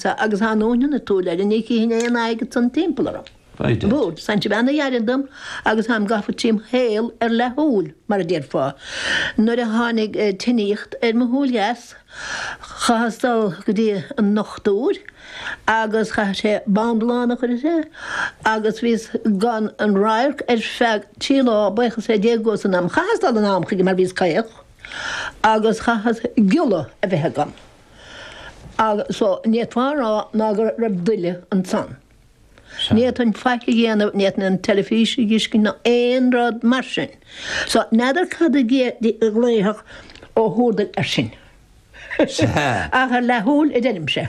Sea, agus thá nóin ina tabhairne air, ní chífinn aon fhaidh ag san timpeall orm. Bridget. But, sin é an rud a dh'éirigh dom agus tháim gafa trím shaol ar leathshúil, mar a déarfá. Nuair a tháinig tinníocht ar mo shúil dheas, chaitheas dul go dtí an ndochtúir agus chaith sé bindealán a chur sé agus bhíos gan aon radharc ar feadh trí lá, baochas le Dia go bhfuair san am. Chaitheas dul in am chuige mar bhíos caoch agus chaitheas giolla a bheith agam. Agus ní fhéadfá a rá ná go raibh daille ansan. Ní fhéadfainn faic a dhéanamh, ní fhéadfainn an teilifís a dh'fheiscint ná aon rud mar sin. So, n'fheadar cad a ghlaofadh Ó hÚrdail air sin. Ach ar leathshúil a deirimse.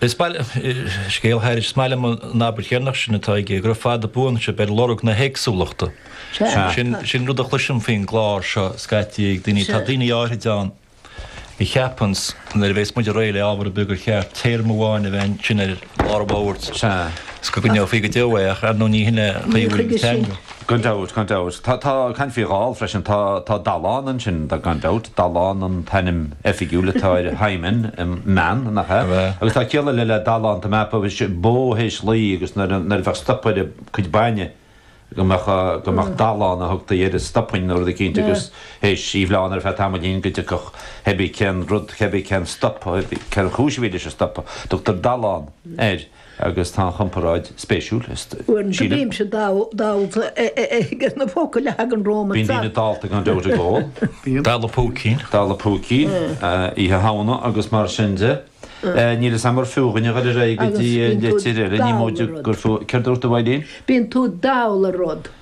Is maith liom scéal thairis. Is maith liom an abairt dheireanach sin atá aige, go raibh fada buan sibh ar lorg na héagsúlachta. Sin an rud a chloisim faoin gclár seo scaití ag daoine. Tá daoine áirithe ann a cheapann nuair a bheas muid réidh le ábhar ar bith gur cheart téarma amháin a bheith ansin i lár an bhoird is go gcoinneofaí go deo é ach ar ndóigh ní shin é an chaoi a bhfuil an teanga. Gan dabht, gan dabht. Tá, tá, caint faoi dhall freisin, tá, tá Dallán ansin, tá, gan dabht. Dallán an t-ainm oifigiúil atá ar hymen mná, nach ea? Agus tá ciall eile le Dallán, dá mba bó théis lao agus nuair a, nuair a bheadh stop ar a cuid bainne go mbeadh, go mbeadh Dallán a thugtaí air, stopán nó rud éicínt agus théis í a bhleán ar feadh tamaillín go dtiocfadh heibí cén rud, heibí cén stop, heibí cén chúis a bhí leis an stop, tugtar Dallán air. agus tá an chomparáid spéisiúil, is Uaireanta sílim. bímse dallta ag na focail a thagann romhatsa. Bíonn daoine dallta gan dabht ag ól. Bíonn. Dalladh púicín. Dalladh púicín, Oíche Shamhna agus mar sin de. Níl fhios a'm ar fiú dhúinne a ghoil ar aghaidh go dtí Agus bíonn tú litir eile, ní dall móide ar rud. gur fiú, céard a dúirt tú Eileen? Bíonn tú dall ar rud.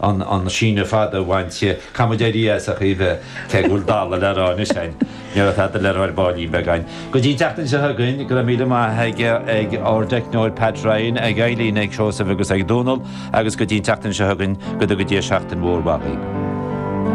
an síneadh fada a bhaint di. Caithfidh muid éirí as, a Chaoimhe, cé go bhfuil dalladh le rá anois againn. Ní raibh tada le rá ar baillín beag againn. Go dtí an tseachtain seo chugainn, go raibh míle maith ag ár dteicneoir Pat Ryan, ag Eileen, ag Seosamh agus ag Dónal agus go dtí an tseachtain seo chugainn, go dtuga Dia seachtain mhór mhaith dhaoibh.